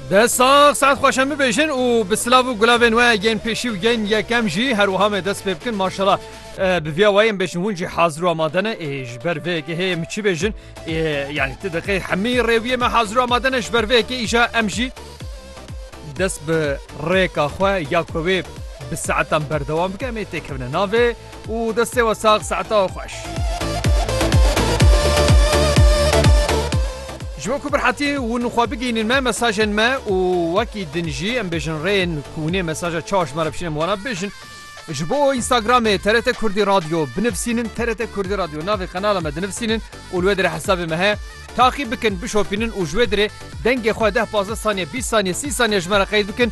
Dest sax saet xweşem bibêjin û bi silav û gulavên we yên pêşî û yên yekem jî her wiha me dest pê bikin maşala bi viya wayên bêjin hûn jî hazir û amade ne ê ji ber vê yekê hê min çi bêjin ê yanî ti diqê hemî rêwiyê me hazir û amade ne ji ber vê yekê îja em jî dest bi rêka xwe ya ku wê bi saetan berdewam bike em ê têkevine navê û destê we sax saeta we xweş. Ji bo ku bi rehetî hûn xwe bigihînin me mesajên me û wekî din jî em bêjin rêyên ku hûnê mesaja çawa ji me re bişînin em wana bibêjin. Ji bo Instagramê TRT Kurdî Radyo binivîsînin TRT Kurdî Radyo navê qenala me dinivîsînin û li wê dirê hesabê me heye. Taqîb bikin, bişopînin û ji wê dirê dengê xwe deh pazdeh saniye bîst saniye sî saniye ji me re qeyd bikin.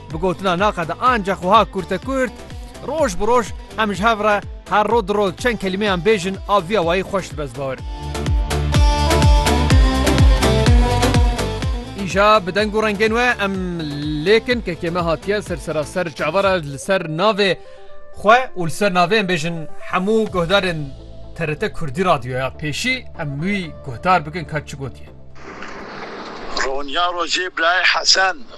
Bi gotina naqada ancax wiha kurt e kurt, roj bi roj em ji hev re her rod di rod çend kelîmeyan bêjin a viya wayî xweş dibe zbar. Îja bi deng û rengên we em lêkin kekê me hatiye ser seraser çavara li ser navê xwe û li ser navê em bêjin hemû guhdarên TRT Kurdî Radyoya pêşî em wî guhdar bikin ka çi gotiye. Ronya rojê birayê Hesen.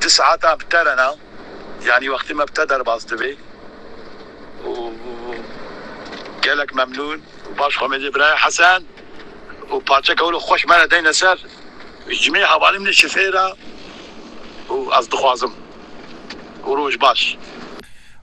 Di saetan bi te re ne, yanî wextê me bi te derbas dibê û gelek memnûn û baş xwemêdê birayê Hesen û parçeke wilo xweş me re deyne ser. Ji me hevalî min e şifê re û ez dixwazim û roj baş.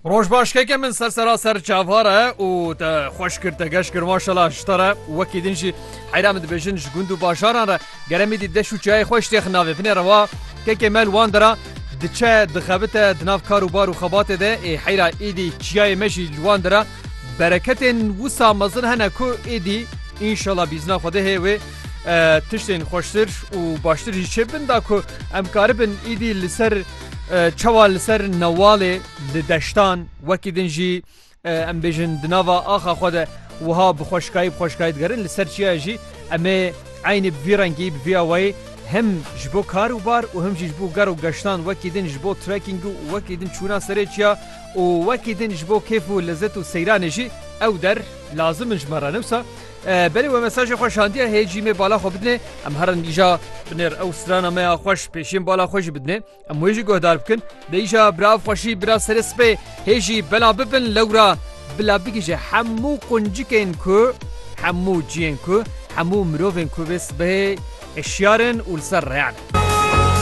Roj baş keke min ser seraser çavar e û te xweş kir te geş kir maşallah ji te re wekî din jî heyra min dibêjin ji gund û bajaran re Geremî dî deş û çiyayê xwe jitêxin navê. Vinê re wa kekê me li wan de ra diçe dixebite di nav kar û bar û xebatê de ê heyra êdî çiyayê me jî li wan de ra bereketên wisa mezin hene ku êdî înşala bîzna Xwedehê wê tiştên xweştir û baştir jî çê bin da ku em karibin êdî li ser çawa li ser newalê li deştan wekî din jî Em bêjin di nava axa xwe de wiha bi xweşikayî bi xweşikayî digerin li ser çiyayê jî em ê eynî bi vî rengî bi vî awayî him ji bo kar û bar û him jî ji bo ger û geştan wekî din ji bo trekîng û wekî din çûna serê çiya û wekî din ji bo kêf û lezet û seyranê jî ew der lazim in ji me re ne wisa belê we mesajê xwe şandiye hê cîmê bala xwe bidinê em herin îja binêr ew strana me ya xweş pêşiyên bala xwe jî bidinê. Em wê jî guhdar bikin. Bêyîşa bira xweşî bira serê sipê hê jî bela bibin lewra bila bigihîje hemû quncikên ku hemû ciyên ku hemû mirovên ku vê sibehê hişyar in û li ser reyan in.